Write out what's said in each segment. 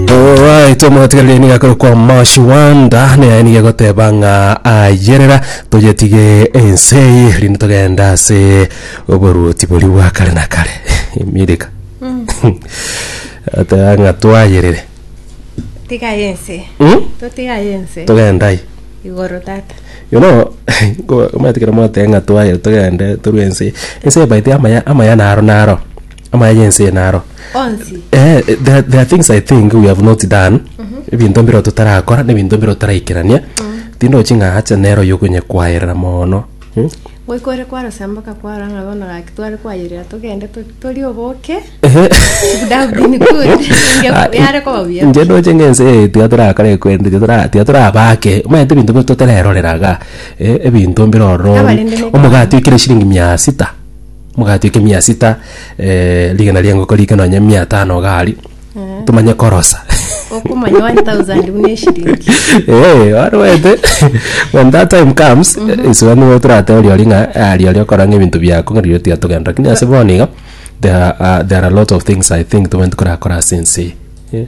Alright, omwatigarire niga kore kwa Moshi Wanda naye niga goteba ng'a ayerera toyetige ense eye rinde togenda ase oboruoti boria bwa kare na kare emireka ateba ng'a twayerere tigaye ense Hmm? totigaye ense togenda ai igoro tata you know ko- omanyete ekero mwateba ng'a twayerere togende torue ense ense ebaite amaya amaya naro naro Amaya yense ena aro. Onsi. Eh, eh, there, there are things I think we have not done. Ebinto mbiro totarakora, nebinto mbiro taraikerania. Tindochi ng'a acha nero yokonye kwaerera mono. Hmm? Goikore kwarosemboka kwaro ng'a bono gaki tware kwayerera togende to- tori oboke. Ehe. Would have been good. Ah, Inge- yare koba buya. Nche ndoche ng'ense eye tiga torakora ekwende tiga tora- tiga torabake omanyete ebinto bito totereroreraga eh, ebinto mbirororo Abarende ne- omogati ekire shiringi mia sita Mogatweka emia sita eh, rigena ri'engoko rike nonya emia etano iga aria tomanye korosa okomanya 1000 buna eshiringi Eh, wari wete when that time comes isura nigo torateba riori ng'a ah, riori okora ng'ebinto biako ng'a riori tigatogenda lakini ase bono iga there are, uh, there are a lot of things i think tomanyete korakora ase ense eye Eh.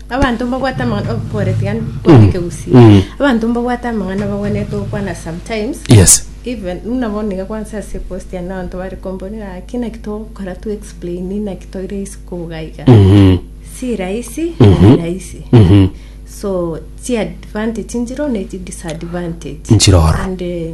Abanto mbabwate amang'ana oh, pole tiga nkwane kegusi Mm. abanto mbabwate amang'ana bagwenerete gokwana sometimes yes even buna bono niga kwansa ase post ya nabanto bare komboni naki naki togokora tu explain naki toire isi kogaiga Mhm. si rahisi Mhm. ni rahisi Mhm. so chi advantage njiro ne chi disadvantage Njiro ororo. and eh,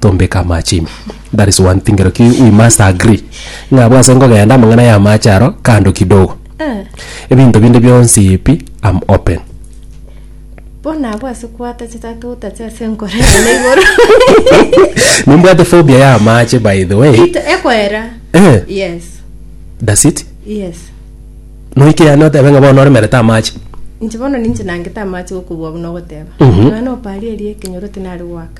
tombeka amache ime. That is one thing Roki we must agree. Ng'a abwo ase nkogenda amang'ana ya amache aro kando kidogo. Eh. Ebinto binde bionsi pi I'm open. Bono abwo ase kwatachete atotache ase enkoro ene igoro. Nimbwate phobia ya amache by the way. Ito ekoera. Eh. Yes. Does it? Yes. Noike yani otebe ng'a bono oremerete amache. Inche bono ninche nangete amache gokobua buna ogoteba. Mhm. Mwana oparie erie ekenyoro tinari goaka.